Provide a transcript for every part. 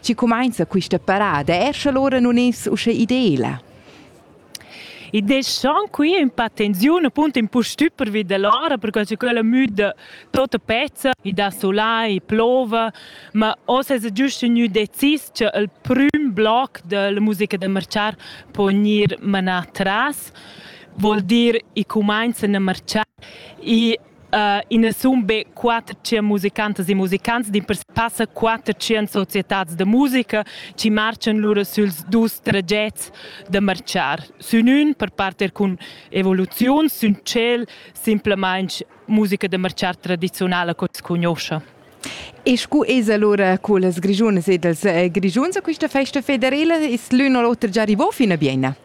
Tgi cumainza quista parada? Er sche l'ora nun es usche ideela. I deschan qui un pa tensiun appunto un po stüp pervi dell'ora perché che quella müda tota pezza i da sola i plova ma oz es giusto gnü decis cha il prüm bloc della musica da marciar po gnir manà tras vuol dir i cumainzan a marciar i I na sun be quattschient musicantas e musicants, dimpers passa quattschient societats da musica chi marchan lura süls dus tragets da marchar. Sün ün per parter cun evoluziuns, sün tschel simplamaing musica da marchar tradiziunala co s'l cugnuoscha. E scu es alura co las Grischunas ed els Grischuns a quista festa federela? Es l'ün o l'oter già rivò fin a Bienna?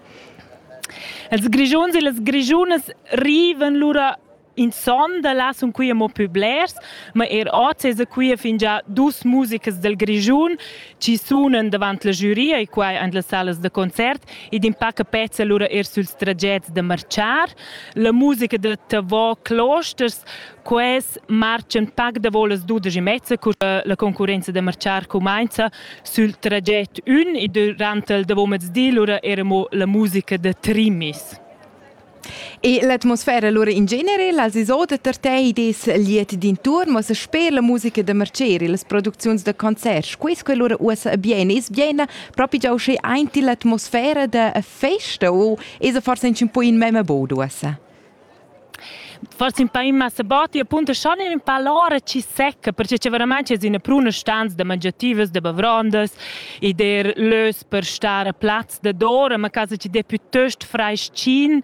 Els Grischuns e las Grischunas rivan lura In son da là sun qui amo pü blers, ma eir hoz esa qui fingià dus musicas dal Grischun chi sunan davant la giuria e quai en las salas da concert ed impaca pezza lura eir süls tragets da marchar. La musica da Tavò Closters, quels marchan pac davo las dudesch e mezza cur che la concurrenza da marchar cumainza sül traget ün e durant il davomezdi lura era mo la musica da Trimis. E l'atmosfera lura in genere, las isoda per te des liet d'inturn, ma sper la musica da Merceri, las producziuns da concerts, quis que lura uossa bien, es bien propi già usché aint l'atmosfera da festa o es forse un po in mema bod uossa? forse un po' in massa batti, appunto schon in po l'ora ci secca, perché c'è veramente es una pruna stanza da mangiativas, da bavrondas e der lös per stare a platz dadora ma casa ci de piuttost freschin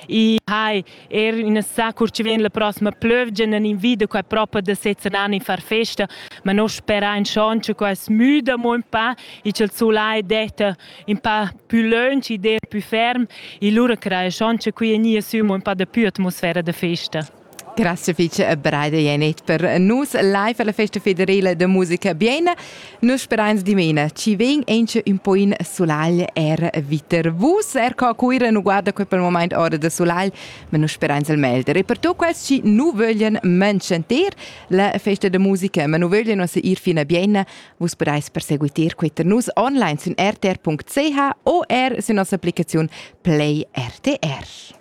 e hai er una sa cur ci vien la prossima plövgia nan invida qua propa da sezzanan in far festa ma no spera in schon che qua es müda mo un pa e c'el sulà è detta un pa più lunch e der più ferm e lura crai schon che qui è nia sü mo un pa da più atmosfera da festa Grazie fece a Breida Janet per nus live alla festa federale de musica Biena. Nus spereins dimena ci ven enche un po in sulagl er viter vus er co cuira nu guarda quel per moment ora de sulagl, ma nus spereins el melder e per tu quels ci nu vöglien mancenter la festa de musica, ma nu vöglien osse ir fino a Biena, vus spereis perseguiter queter nus online su rtr.ch o er su nostra applicazione Play RTR.